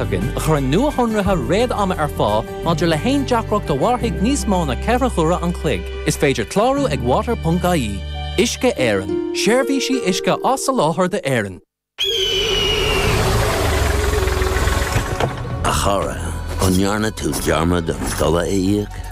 againn a chuireann nuashonruithe réad ama ar fáil maidir le haon deacracht a mhairfidh níos mó na ceithre huaire an chloig. Is féidir clárú ag water.ie. Uisce Éireann, seirbhísí uisce á soláthar d'Éirinn. A chara, an ndearna tú dearmad an dole a íoc?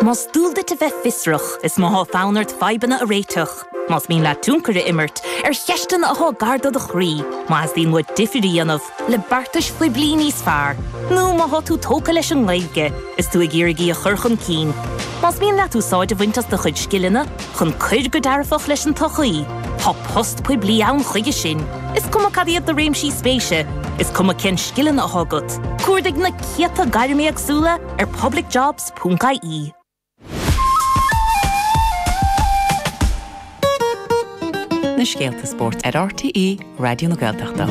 Más dual duit a bheith fiosrach, is má tá fonn ort fadhbanna a réiteach, más mian leat tionchar a imirt ar cheisteanna atá gar do do chroí, má theastaíonn uait difear a dhéanamh le beartais phoiblí níos fearr, nó má tá tú tógtha leis an nGaeilge is tú ag iarraidh í a chur chun cinn, más mian leat úsáid a bhaint as do chuid scileanna chun cuir go dearfach leis an tsochaí, tá post poiblí ann chuige sin, is cuma cad iad do réimsí spéise, is cuma cén scileanna atá agat. Cuardaigh na céadta gairm éagsúla ar publicjobs. www.bbc.ie. Na scéalta spóirt ar RTÉ Raidió na Gaeltachta.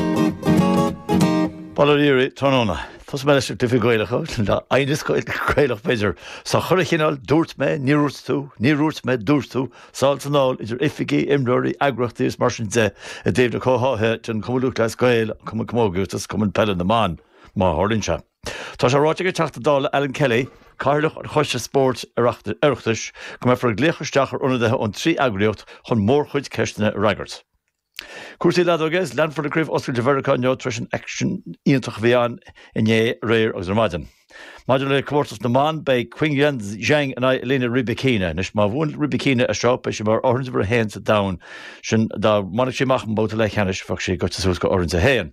Paul O'Leary, tráthnóna. Tosóidh mé leis na cluichí Gaelacha, le haighneas Gaelach b'fhéidir. Sa chúirt, cineál, dúirt mé, níor úirt tú, níor úirt mé, dúirt tú, sá san fheoil idir oifigí, imreoirí, eagraíochtaí agus mar sin de i dtaobh na comhtháithe den Chumann Lúthchleas Gael, an Cumann Camógaíochta is Cumann Peile na mBan. Má tharlaíonn sé. Tá sé ráite ag an Teachta Dála Alan Kelly, Cathaoirleach an Choiste Spóirt, Oireachtais, go mbeifear ag glaoch isteach ar ionadaithe ón trí eagraíocht chun mórchuid ceisteanna a fhreagairt. Cúrsaí leadóige is leanfar le Craobh Oscailte Mheiriceá inniu tar eis an aicsean iontach a bhí ann inné, aréir agus ar maidin. Maidir le comórtas na mban, beidh Qingyuan Zheng in aghaidh Elina Rybakina. Anois, má bhuann Rybakina é seo, beidh sí mar imreoir uimhir a haon sa domhan. Sin dá mbainfeadh sí amach an babhta leathcheannais, bheadh sí gaibhte suas go huimhir a haon.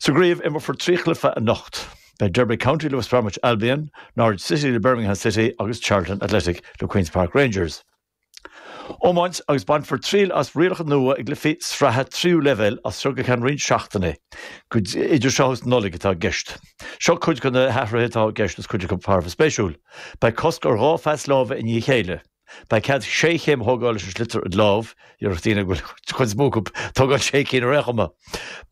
Sa gcraobh, imreofar trí chluiche anocht. Beidh Derby County le West Bromwich Albion, Norwich City le Birmingham City agus Charlton Athletic le Queens Park Rangers. Iomáint agus bainfear triail as rialacha nua i gcluichí sraithe tríú leibhéal as seo go ceann roinnt seachtainí. Go idir seo agus Nollaig atá i gceist. Seo cuid de na hathruithe atá i gceist agus cuid acu thar a bheith spéisiúil. Beidh cosc ar dhá phas láimhe i ndiaidh a chéile. Beidh cead sé chéim a thógáil leis an sliotar id lámh, déarfadh daoine go bhfuil cuid mhór acu ag tógáil sé chéim ar aon chuma.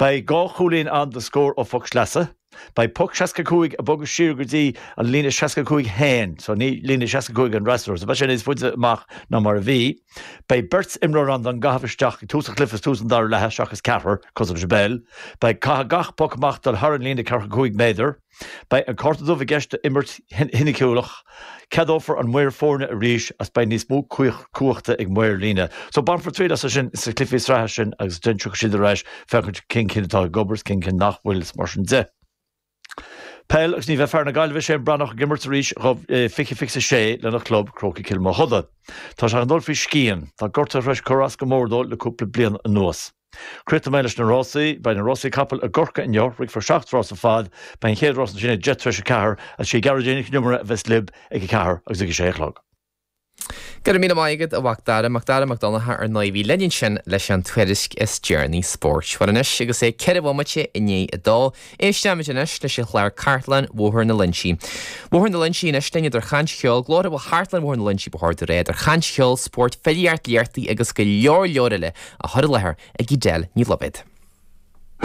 Beidh dhá chúilín ann do scór ó phoc sleasa. Beidh poc 65 ag bogadh siar go dtí an líne 65 féin, so ní líne 65 an fhreasúra, so beidh sé níos faide amach ná mar a bhí. Beidh beirt imreoir ann don gcaitheamh isteach ag tús an chluife is tús an dara leatha seachas ceathrar, cosúil leis an bpeil. Beidh, caithfidh gach poc amach dul thar an líne 45 méadar. Beidh an cárta dubh i gceist do imirt shoiniciúil. Ceadófar an maor foirne arís agus beidh níos mó cumhachta ag maor líne. So bainfear triail astu sin sna cluifí sraithe sin agus déanfaidh siad iad a mheas féachaint cén cinn atá ag obair is cén cinn nach bhfuil is mar sin de. Peil agus ní bheidh fear na Gaillimhe Shane Breathnach ag imirt arís i dhá mhíle fiche sé lena chlub Crócaigh Cill Mochuda. Tá sé ag dul faoi scian. Tá gortuithe tar éis cur as go mór dó le cúpla bliain anuas. Críochnóidh mé leis na rásaí. Beidh na rásaí capaill i gCorcaigh inniu. Rithfear seacht rás ar fad. Beidh an chéad rás ansin ag deich tar éis a ceathair. Is í Gearóidín Nic an Iomaire a bheas libh ag a ceathair agus ag a sé a chlog. Go raibh míle maith agat a Mhacdara, Macdara Mac Donncha ar ndóigh a bhí linn ansin leis an tuairisc is deireanaí spóirt. Bhuel anois agus é ceithre bhomaite i ndiaidh a dó, Éisteimid anois leis an chlár Cartlann Bhóthar na Loinsí. Bóthar na Loinsí anois linn idir chaint, cheol, glór amhail Chartlann Bhóthar na Loinsí ba chóir do ré idir chaint, cheol, spóirt, filíart, léartaí agus go leor leor eile a chur i láthair ag Edel Ní Loibhéad.